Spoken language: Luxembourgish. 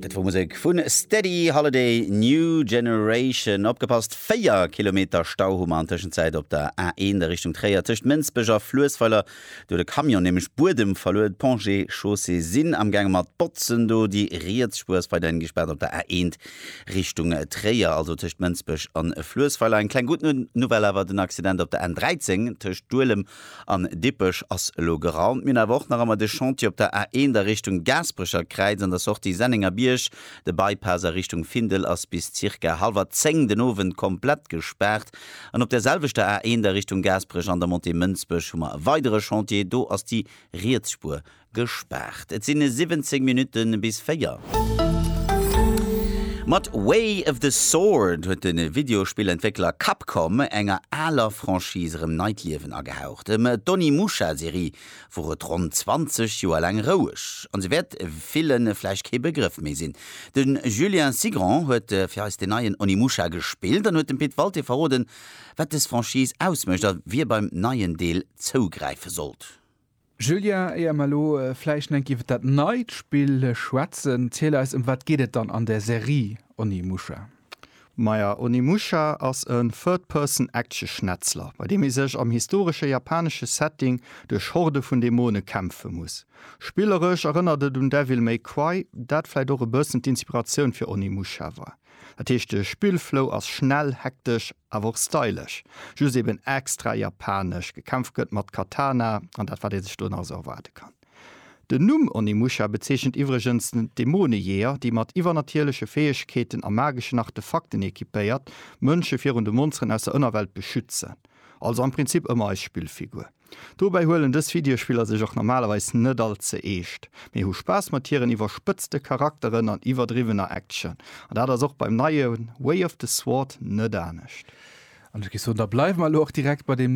Dat wor Musek vu Steady Holiday, New Generation. Opgepasst, 4 Kilometer Stau hu mer an Tëschenzäit op der A1 a Richtung Tréier. Tëscht Mënsbech a Fluessweiler, do huet e Camion nämlech Buedem verluer. D'Ponts et Chaussées sinn am gaange mat botzen do. Déi riets Spuer ass weiderhin gespaart op der A1 Richtung Tréier, also tëscht Mënsbech a Fluessweiler. Eng kleng gutt Nouvelle awer, den Accident op der N13 tëscht Duelem An Dippech ass elo geraumt. Mir hunn awer och nach ëmmer de Chantier op der A1 a Richtung Gaasperecher Kräiz an der Sortie Sennengerbierg. De Bypass a Richtung Findel ass bis zirka hallwer 10 den Owend komplett gespaart. An op der selwechter A1 a Richtung Gaasperech an der Montée Mënsbech hu mer e weidere Chantier, do ass déi riets Spuer Gespaart. Et sinn 17 Minutten bis 4. Mat Way of the Sword huet de Videospillentwéckler Capcom enger aler Franchise erëm neit Liewen agehaucht. Ëm d'Onimusha-Serie wor et ronn 20 Joer laang roueg, an se wäert ville vläicht kee Begrëff méi sinn. De Julien Cigrand huet fir eis deen neien Onimusha gespillt an huet dem Pit Walté verroden, wat dës Franchise ausmécht a wie beim neien Deel zougräife sollt. Julia, éier mer elo vläicht enk iwwer dat neit Spill schwätzen, ziel eis, ëm wat geet et dann an der Serie Onimusha? Maja, Onimusha ass e Third-Person-Action-Schnetzler, bei deem ee sech am historesche japanesche Setting duerch Horde vun Dämone kämpfe muss. Spilleresch erënnert et un Devil May Cry, dat vläicht och e bëssen d'Inspiratioun fir Onimusha war. Dat heescht de Spillflow ass schnell, hektesch awer och stylesch, just eben extra japanesch. Gekämpft gëtt mat Katana an dat wat ee sech do nach esou erwaarde kann. Den Numm Onimusha bezeechent iwwregens d'Dämonejeeër, déi mat iwwernatierleche Fäegkeeten a mageschen Artefakten equipéiert Mënsche virun de Monsteren aus der Ënnerwelt beschützen. Also am Prinzip ëmmer eis Spillfigur. Dobäi huelen dës Videospiller sech och normalerweis net all ze eescht, mee hu Spaass mat hiren iwwerspëtzte Charakteren an iwwerdriwwener Action. An dat ass och beim neie Way of the Sword net anescht. An ech géif soen, da bleiwe mer elo och direkt bei deem.